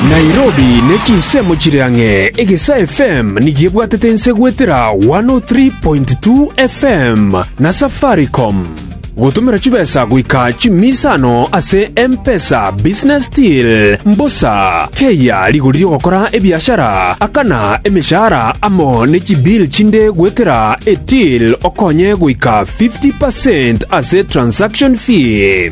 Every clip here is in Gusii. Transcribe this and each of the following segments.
Nairobi ne chinsemo chire ang'e, Egesa FM nigo ebwatete ense goetera 103.2 FM na Safaricom. Gotomera chibesa goika chimisa ano ase M-Pesa, Business Deal, Mbosa, Keyia, rigori rigokora ebiashara, Akana, emeshahara amo ne chibill chinde goetera eTill okonye goika 50% ase transaction fee.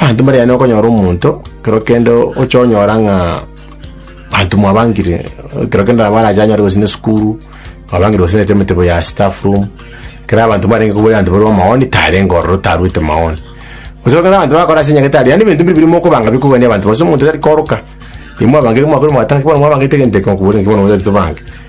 Abanto mbare yaani okonyora omonto ekero kende ocha onyora ng'a abanto mwabangire ekero kende nabo arache anyore gose na esukuru mwabangire gose naende emetebo ya staff room ekero abanto mbarenge koboyia abanto bare amaoni tarenge ororo taruete maoni gose ekero abanto bagokora ase enyagete aria yaani ebinto mbire biri mokobanga bikogania abanto gose omonto tari koroka imwabangire mwakore mwateba naki bono mwabangete egento eke okobori naki bono motari tobange.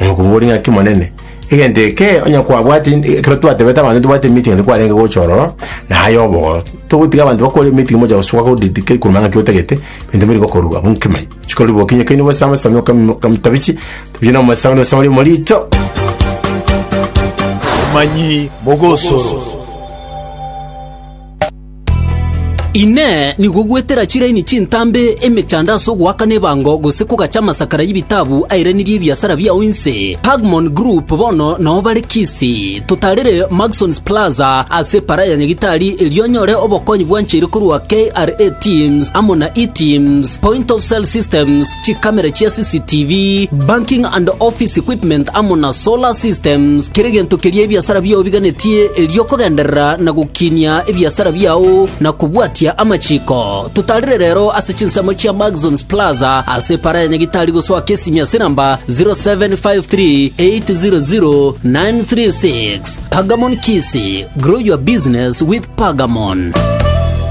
Oyo okobua ore ng'aki monene. Egento eke onye kwabwati ekero twatebete abanto tobwate emeeting nabo kwarenge gocha ororo na aye obogoro. Togotiga abanto bakore emeeting mocha gosoa godidika ekuruma ng'aki otagete ebinto biri gokorwa abwo nkemai. Chikori boki onye kaini obasame same okam okamtabiche tabiche na omosaani osamari omorito. Omanyi mogosoro. Inee! Nigo gwetera chiraini chintambe emechando ase ogoakana ebango gose kogacha amasakara y'ebitabu airanirie ebiasara biao inse? Pagmon Group bono nao bare Kisii. Totarire Maxons Plaza ase epara ya Nyagitari erio onyore obokonyi bwancheire korwa KRA Teams amo na E-teams. Point of sale systems, chikamera chia CCTV, banking and office equipment amo na solar systems, kera egento keria ebiasara biao biganetie erio okogenderera na gokinia ebiasara biao na kobwatia amachiko. Totarire rero ase chinsemo chia Maxons Plaza ase epara ya Nyagitari gosoa Kisimia ase namba 0753 800 936. Pagamon Kisi, grow your business with Pagamon.